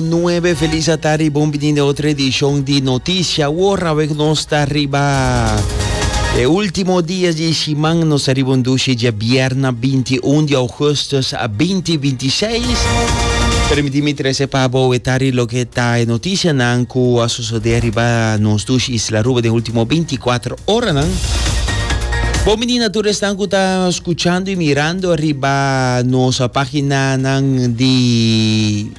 Nuebe feliz atardi y bon bini den otro edicion di Noticia. Awor awe cu nos ta riba e ultimo dies di e siman, nos ta riba un dushi dje bierna 21 di augustus 2026. Permiti mi trece pa bo e tardi loke ta e noticianan cu a sosode riba nos dushi Isla Aruba den ultimo 24 oranan. Bon bini na tur esnan cu ta scuchando y mirando riba nos paginanan di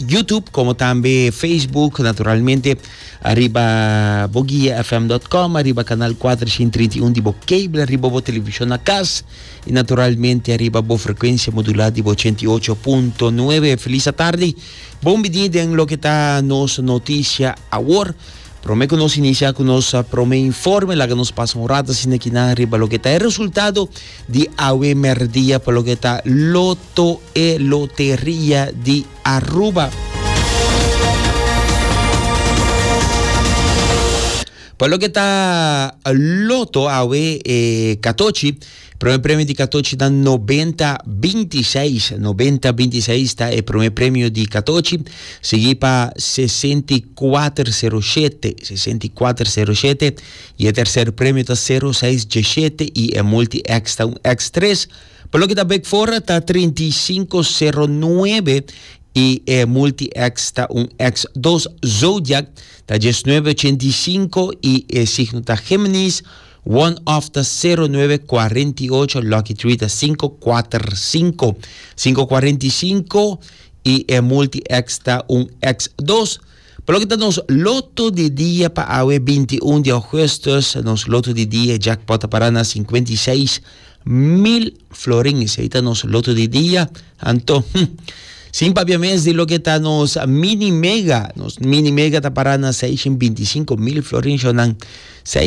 YouTube como también Facebook, naturalmente arriba boguiafm.com, arriba canal 431 de bo cable, arriba bo televisión a cas y naturalmente arriba bo frecuencia modulada de bo 88.9. Feliz tarde, bom bidi den lo que está nos noticia awor. Prome que nos inicia con nos prome informe, laga nos pasa un rato sin aquí na arriba lo que está el resultado. Di awe merdia pa loke ta Lotoe, Loteria di Aruba. Pa loke ta Loto awe e katochi, prome premio di katochi ta 90-26. 90-26 ta e prome premio di katochi, sigi pa 64-07. 64-07. y e tercer premio ta sero seis dieshete y e multi X ta un X tres, pa loke ta bek fora ta trinta y cinco sero nuebe y e multi X ta un X dos, zodiac ta diesnuebe ochenta y cinco y e signo ta Geminis, one off ta sero nuebe cuarenta y ocho, lucky three ta cinco kuater cinco, cinco cuarenta y cinco y e multi X ta un X dos. Pa loke ta nos loto di dia pa awe binti i un di ougustus, nos loto di dia jackpot ta para na sinkuenta i seis mil florin. Esei ta nos loto di dia. Anto, hm, sin papia mes di loke ta nos mini mega, nos mini mega ta para na seishen binti i sinku mil florin. Shornan,